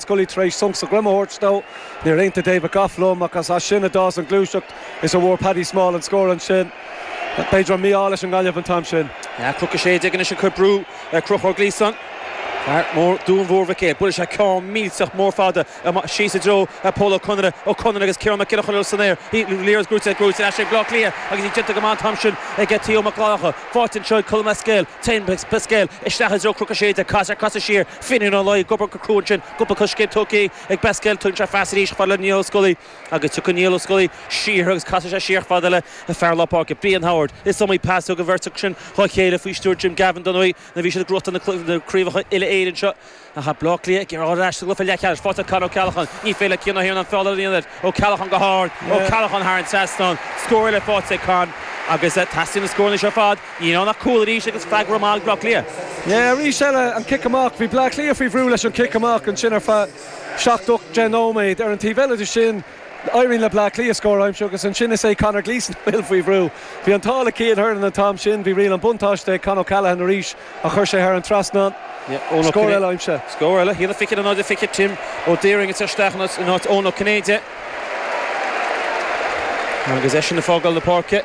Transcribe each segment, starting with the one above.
Scully tar éis sonc sa droim a thabhairt dó. Níor aontaigh David Gough liom ach as sin a d'fhás an gluaiseacht as a bhfuair Paddy Small an scór ansin. B'fhéidir an mí-ádh leis an nGaillimh an t-am sin. Cnoc 16 anois ag cur brú ar Chonchúr Gleeson. Fear mór Dhún Mór Mhic Éil. Buail sé ceann millteach mór fada amach síos i dtreo Pól Ó Conaire. Ó Conaire agus Ciarán Mac Giolla Chainnigh san aer. Bhí Lear as Gruaige Gruaige as sin ag Bleá Cliath agus bhí déanta go maith an t-am sin ag Theo Mac Fhlannchadha. Faighte anseo ag Colm Basquel, tagann Basquel isteach i dtreo Chnoc 16. Casadh, casadh siar Finnian Ó Laoi ag obair go crua ansin, cúpla coiscéim tugtha ag Basquel, tugann sé pas arís chomh fada le Niall Ó Scolaí agus tiocfaidh Niall Ó Scolaí siar agus casfaidh sé siar chomh fada le fear lár páirce, Brian Howard. Is iomaí pas a thug an bheirt acu sin dhá chéile faoi stiúir Jim Gavin an uair a bhí siad ag gnóthachtáil na craobhacha uile-Éireann seo. Tá Bleá Cliath ag iarraidh dul ar ais sa gcluiche leathcheannais. Faighte ag Con O'Callaghan. Ní féidir le Cian Ó hIarnáin feall a dhéanamh air. O'Callaghan go hard. O'Callaghan thar an trasnán. Scór eile faighte ag Con agus teastaíonn na scóranna seo ar fad. Ní raibh ach cúl arís agus freagra maith ag Bleá Cliath. Arís eile, an cic amach. Bhí Bleá Cliath faoi bhrú leis an chic amach ansin ar feadh seacht, ocht, deich nóiméad. Ar an taobh eile de sin, éiríonn le Bleá Cliath scór a aimsiú agus ansin is é Conor Gleeson a bhfuil faoi bhrú. Bhí an t-ádh le Cian Hernon an t-am sin, bhí riail an buntáiste ag Con O'Callaghan arís ach chuir sé thar an trasnán. Scór eile aimsithe. Scór eile. Thíos an fichiú in áit an fiche, Tim Ó Diorraing ag teacht isteach in áit Eoin Ó Cinnéide. Agus eisean ag fágáil na páirce.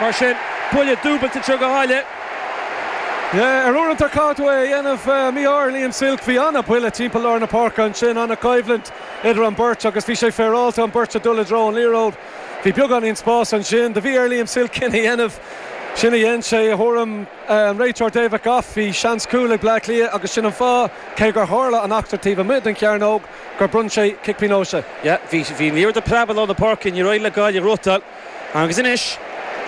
Mar sin, buille dúbailte do Ghaillimh. Yeah, ar uaireanta caithfidh tú é a dhéanamh. Mí-ádh ar Liam Silke, bhí an-bhuille timpeall lár na páirce ansin, an-choimhlint idir an bheirt agus bhí sé féaráilte an bheirt a dul i dtreo an liathróid. Bhí beagáinín spáis ansin, do bhí ar Liam Silke sin a dhéanamh. Sin a dhein sé, i dtuairim an réiteoir David Gough. Bhí seans cúil ag Bleá Cliath agus sin an fáth, cé gur tharla an eachtra taobh amuigh den chearnóg, gur bhronn sé cic pionóis. Yeah, bhí an liathróid ag preabadh lár na páirce, níor éirigh le Gaillimh rud a. Agus anois,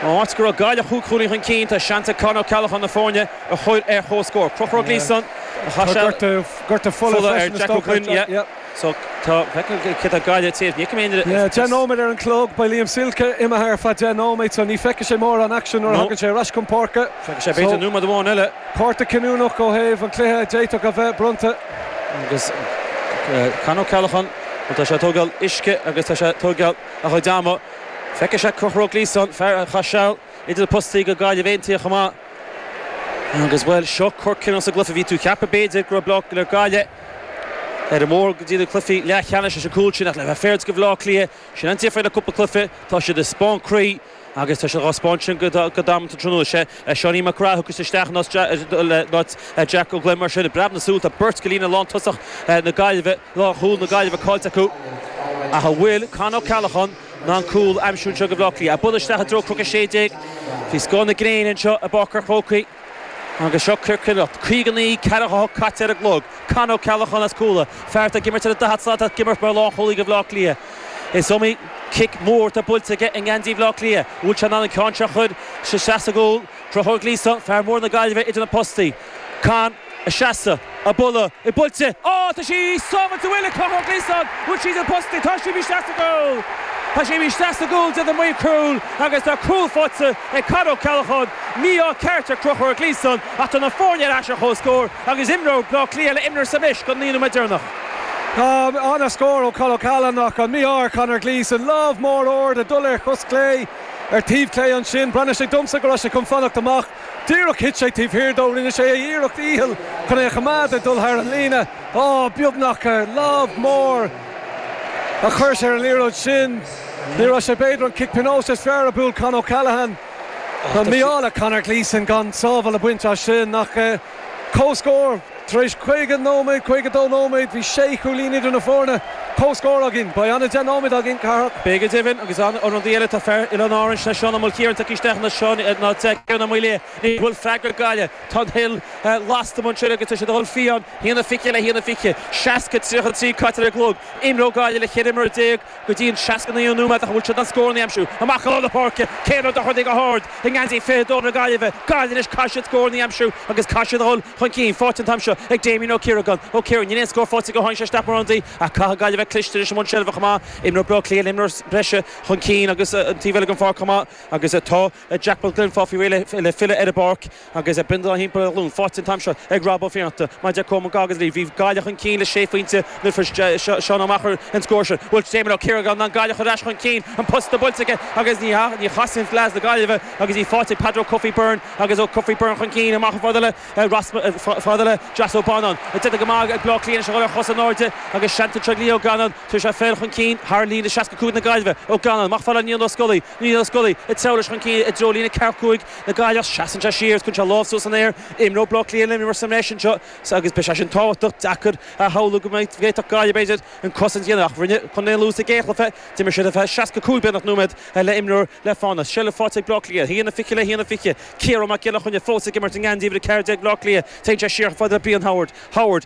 áit go raibh Gaillimh cúig chúilín chun cinn, tá seans ag Con Ó Ceallacháin na foirne a chur ar chomhscór. Conchúr Gleeson a chaith seal Gortú fola ar Jack Ó Gloinn, so tá cé tá Gaillimh taobh, ní fheicim aon rud. Yeah, deich nóiméad ar an gclog, beidh Liam Silke imithe ar feadh deich nóiméad, so ní feicfidh sé mórán aicsin nuair a thagann sé ar ais chun páirce. Feicfidh sé b'fhéidir nóiméad amháin eile. Cárta cinniúnach ó thaobh an chluiche a d'fhéadfadh a bheith bronnta. Agus Con Ó Ceallacháin, bhuel tá sé ag tógáil uisce agus tá sé ag tógáil. a chuid ama. Feicfidh sé Conchúr Gleeson, fear a chaith seal idir na postaí go Gaillimh Aontaithe chomh maith, agus, bhuel, seo cor cinniúnach sa gcluiche. Bhí tú ag ceapadh, b'fhéidir, go raibh Bleá Cliath le Gaillimh ar an mbóthar go dtí na cluichí leathcheannais leis an gcúl sin, ach le bheith fair do Bhleá Cliath, sin an difear le cúpla cluiche, tá siad ag spáint croí. Agus tá sé dhá spáint sin go damanta tráthnóna. Sé Seáinín Mac Craith a thiocfas isteach in áit Jack Ó Gloinn mar sin i bpreab na súl. Tá beirt go líne lántosach na Gaillimhe, lánchúl na Gaillimhe caillte acu ach an bhfuil Con Ó Ceallacháin in ann cúl a aimsiú anseo go Bhleá Cliath? Ag bualadh isteach i dtreo Chnoc 16, faoi scáth na gréine anseo i bPáirc an Chrócaigh. Agus seo cor cinniúnach, 59, ceathracha a cúig caite ar an gclog, Con Ó Ceallacháin as Cuala, fear atá ag imirt ar an daichead slat ach ag imirt mar lánchúlaí do Bhleá Cliath. Is iomaí cic mór atá buailte aige i ngeansaí Bhleá Cliath. An bhfuil sé in ann an ceann seo a chur isteach sa gcúl? Conchúr Gleeson, fear mór na Gaillimhe, idir na postaí. Con. ag seasamh, ag bualadh í buailte á tá sí sábháilte an bhfuil ag Conchúr Gleeson bhuail sí na postaí tá siad isteach sa gcúl tá siad isteach sa gcúl deir na maoir cúil agus tá cúl faighte ag Con Ó Ceallacháin mí-ádh ceart ar Conchúr Gleeson ach tá na foirne ar ais ar chomhscór agus imreoidh Blá Cliath le imreoir sa mbreis go dtí an nóiméad deireanach. Tá ana scór ó Con O'Callaghan ach an mí-ádh ar Connor Gleeson. Lámh mór ard ag dul ar chos chlé ar taobh clé ansin. Breathnaigh sé domsa go raibh sé chun fanacht amach. Díreach thit sé taobh thiar dó rinne sé a iarracht dhícheall chun é a choimeád ag dul thar an líne. Á, beagnach! Lámh mór a chuir sé ar an liathróid sin. Ní raibh sé b'fhéidir an cic pionóis is fearr a bhuail Con O'Callaghan. Tá mí-ádh le Conor Gleeson gan sábháil a bhaint as sin ach. Comhscór, Tar éis 50 nóiméad, 52 nóiméad, bhí sé chúilín idir na foirne. Comhscór againn. Beidh ana 10 nóiméad againn, Cárthach. Beidh, go deimhin, agus an rud eile atá fear Oileáin Árann ná Seán Ó Maoilchiaráin tagtha isteach anseo in ionad Ciarán Ó Maoilí? An bhfuil freagra ag Gaillimh? Tá an Hill lasta anseo agus tá siad a dhul fiáin, 1-20 le 1-20, 60, 33 caite ar an gclog, imreoidh Gaillimh le cheithre imreoir déag, Go dtí an seasca-naoú nóiméad ach an bhfuil siad in ann scór a aimsiú amach i lár na páirce. Céin Ó Dorchaí go hard i ngeansaí fiche a dó na Gaillimhe. Gaillimh anois caithfidh siad scór a aimsiú agus caithfidh siad a dhul chun cinn. Faighte an t-am seo ag Damien Ó Ciaragáin. Ó Ciaragáin, níl aon scór faighte aige ó tháinig sé isteach mar ionadaí ach caithfidh Gaillimh bheith cliste anois i mbun seilbhe chomh maith. Imreoidh Bleá Cliath imreoir breise chun cinn agus an taobh eile den pháirc chomh maith agus tá Jack Glynn ag fáil faoi réir le filleadh ar an bpáirc. Agus an bindealán thimpeall ar a ghlúin faighte an t-am seo ag Rob Ó Fiannachta, mar a deir Coman Goggins linn, bhí Gaillimh chun cinn le sé phointe nuair a fuair Seán Ó Meachair an scór sin. An bhfuil Damien Ó Ciaragáin in ann Gaillimh a chur ar ais chun cinn, an posta buailte aige agus ní chasann chun leas na Gaillimhe agus í faighte ag Peadar Ó Cofaigh Byrne agus Ó Cofaigh Byrne chun cinn amach chomh fada le Josh Ó Bannáin. Déanta go maith ag Bleá Cliath anois a dhul ar chos in airde agus seans ag Lee Ó Ganáin téann sé féin chun cinn thar líne 65 na Gaillimhe. Ó Ganáin amach chomh fada le Niall Ó Scolaí, Niall Ó Scolaí ag treabhadh leis chun cinn i dtreo líne ceathracha cúig na Gaillimhe ach seasann sé siar is cuireann sé lámh suas san aer. Imreoidh Bláth Cliath le imreoir sa mbreis anseo agus beidh sé sin tábhachtach. Deacair a shamhlú go bhféadfadh Gaillimh, b'fhéidir, an cosaint a dhéanamh ach rinne Contae an Lú sa gcéad chluiche. D'imir siad ar feadh 65 beagnach nóiméad le imreoir le fána. Seilbh faighte ag Bláth Cliath, 1-20 le 1-20. Ciarán Mac Giolla Chainnigh fós ag imirt i ngeansaí uimhir a 14 Bhláth Cliath. Téann sé siar chomh fada le Brian Howard. Howard.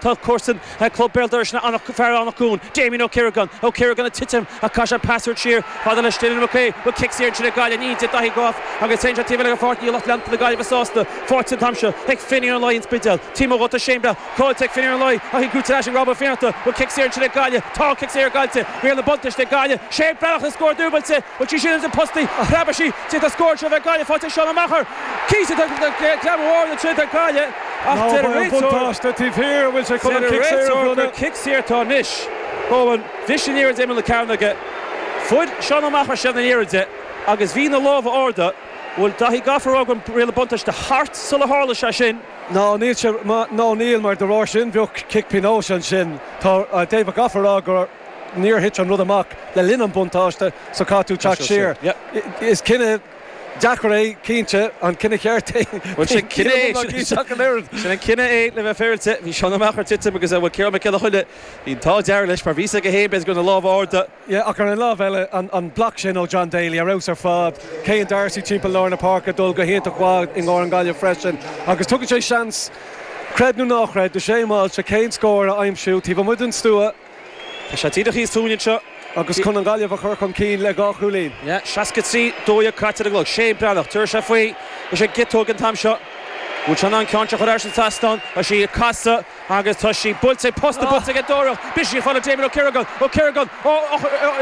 Tá comharsan club Béal Dorais ná fear Anach Cuain, Damien Ó Ciaragáin, Ó Ciaragáin ag titim ach caitheann sé pas uaidh siar chomh fada le Dylan McHugh, an bhfuil cic saor ansin ag Gaillimh níl a deir Daithí Gough agus téann sé taobh eile den pháirc níl lucht leanta na Gaillimhe sásta faighte an t-am seo ag Finnian Ó Laoi an Spidéal, ag titim uaidh agus tá seilbh caillte ag Finnian Ó Laoi ach í brúite ar ais ag Rob Ó Fiannachta, an bhfuil cic saor ansin ag Gaillimh tá an cic saor caillte riail an bhuntáiste ag Gaillimh Shane Breathnach le scór dúbailte, an bhfuil sí sin idir na postaí a threaba sí tig le scór anseo bheidh Gaillimh faighte ag Seán Ó Meachair, Cíos a dtugtar do chreim mhór na tríotar gaile ach deir an réiteoir gur cic saor atá anois. Cowen, bhris an liathróid ar imeall na cearnóige. Fuair Seán Ó Meachair seilbh na liathróide agus bhí na lámha ard. Bhfuil Daithí Gough ag rá go raibh riail na buntáiste thart sular tharla sé sin. Ná níl sé, ná níl mar de bharr sin bheadh cic pionóis ansin. Tá David Gough ag rá gur níor thit an rud amach le linn an buntáiste so caithfidh tú teacht siar. Is cinneadh. Deacair é, cinnte. An cinneadh ceart é? Bhuel, sin cinneadh é. Níl ann ach cinneadh ach an oiread. Sin an cinneadh é, le bheith féaráilte. Bhí Seán Ó Meachair ag titim agus, bhuel, Ciarán Mac Giolla Chainnigh, bhí an t-ádh dearg leis, mar bhí a fhios aige féin, b'fhéidir, go raibh na lámha ard. Yeah, ach ar an lámh eile, an block sin ó John Daly, ar fheabhas ar fad. Céin D'Arcy timpeall lár na páirce, dul go hiontach mhaith i gcomhair na Gaillimhe freisin. Agus tugann sé seans, creid nó ná chreid, do Shane Walsh a chéad scór a aimsiú taobh amuigh den stua. Tá sé díreach thíos fúinn anseo. Agus chun an Ghaillimh a chur chun cinn le dhá chúilín. 63, 12 caite ar an gclog. Shane Breathnach, tabharfaidh sé faoi. Leis an gciotóg an t-am seo. Bhfuil sé in ann an ceann seo a chur thar an trasnán. Tá sí ag casadh agus tá sí buailte ag posta, buailte ag an dóireach. Briseann sí faoi Damien Ó Ciaragáin. Ó Ciaragáin, ó,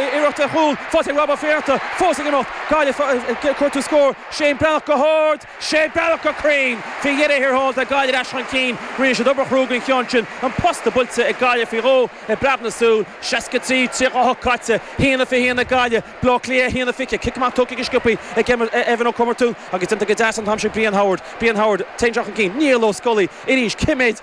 iarracht ar chúl, faighte ag Rob Ó Fiannachta, fós ag imeacht. Gaillimh ag cuartú scór. Shane Breathnach go hard. Shane Breathnach go cruinn faoi dheireadh thiar thall, tá Gaillimh ar ais chun cinn. Rinne siad obair chrua den cheann sin, an posta buailte ag Gaillimh faoi dhó i bpreab na súl. 63, 38 caite, haon a fiche haon ag Gaillimh, Baile Átha Cliath 1 a 20. Cic amach tugtha go sciopaí ag Evan Ó Comartúin agus déanta go deas an t-am sin ag Brian Howard. Brian Howard, téann sé chun cinn. Niall Ó Scolaí arís. Cé méid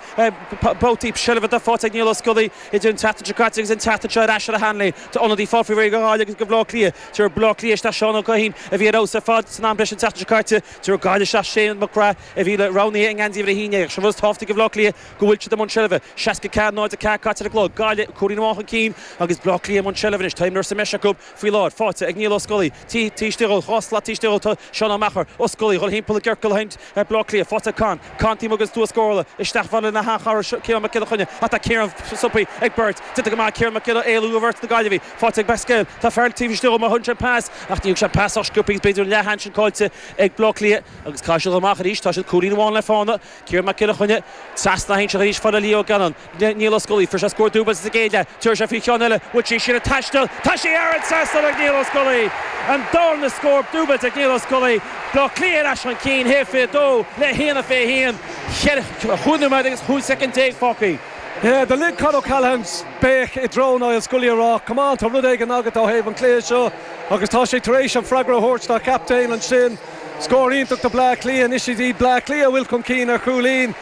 babhtaí seilbhe atá faighte ag Niall Ó Scolaí idir an tseachtain seo caite agus an tseachtain seo ar ais ar a sheanléim? Tá ionadaí ag fáil faoi réir ag Gaillimh agus ag Baile Átha Cliath. Tabharfaidh Bleá Cliath isteach Seán Ó Guithín, a bhí ar fheabhas ar fad san am breise an tseachtain seo caite. Tabharfaidh Gaillimh isteach Shane Mac Craith, a bhí le roghnaithe i ngeansaí uimhir 11. Ach sé rud is tábhachtaí do Bhleá Cliath go bhfuil siad i mbun seilbhe. 64, 0, 4 caite ar an gclog. Gaillimh cúilín amháin chun cinn agus Bleá Cliath i mbun seilbhe anois. Tá imreoir sa mbreis acu faoi láthair. Faighte ag Niall Ó Scolaí. Taobh istigh dhó. Dhá slat istigh dhó tá Seán Ó Meachair. Ó Scolaí dhul thimpeall i gciorcal. Ar Bhleá Cliath, faighte ag Con, Con timpeall an stua ag gabháil isteach bhaile na h-Achartha seo Ciarán Mac Giolla Chainnigh ach tá Ciarán stopthaí ag beirt déanta go maith Ciarán Mac Giolla éalú ó bheirt na Gaillimhe, faighte ag Basquel, tá fear taobh istigh dhó má thugann sé pas ach ní thugann sé pas sách scioptha agus b'fhéidir an leathsheans sin caillte ag Bleá Cliath agus caithfidh siad dhul amach arís, tá siad cúilín amháin le fána, Ciarán Mac Giolla Chainnigh, trasna a hainseach arís fada le Lee Gannon. Niall Ó Scolaí, Fuair sé scór dúbailte sa gcéad leath, tiúrfaidh sé faoi cheann eile, bhuel tá sé sin ag taisteal, tá sí thar an trasnán ag Niall Ó Scolaí! An darna scór dúbailte ag Niall Ó Scolaí, Bleá Cliath ar ais chun cinn, 1 a 22 le 1 a 21, cheithre chúig nóiméad agus chúig soicind déag fágthaí. Do lig Con O'Callaghan, béic i dtreo Niall Scully a rá, Come on, tá rud éigin agat ó thaobh an chluiche seo agus tá sé tar éis an freagra a thabhairt dá chaptaen ansin. Scór iontach do Bleá Cliath. Anois is iad Bleá Cliath a atá chun cinn ar chúilín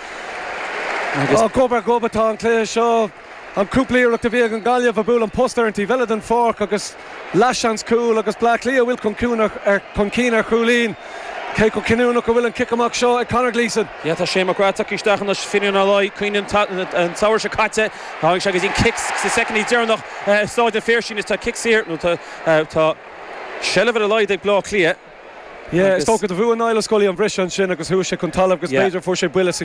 agus gob ar ghob atá an cluiche seo. An cúpla iarracht a bhí ag an nGaillimh, buaileann an post ar an taobh eile den pháirc agus leathsheans cúl agus Bleá Cliath a bhfuil chun cinn ar chúilín. Cé chomh cinniúnach a bhfuil an cic amach seo ag Conor Gleeson? Tá Shane McGrath tagtha isteach anois, Fine Gallian, cuimhin an samhradh seo caite. Tháinig sé go dtí an cic sa soicind deireanach i Stáid an Phiarsaigh. Anois tá cic saor nó tá seilbh ar a laghad ag Bleá Cliath. Is dócha gur bhuaigh Niall Scully an briseadh ansin agus chuaigh sé chun talaimh agus b'fhéidir fuair sé buille sa.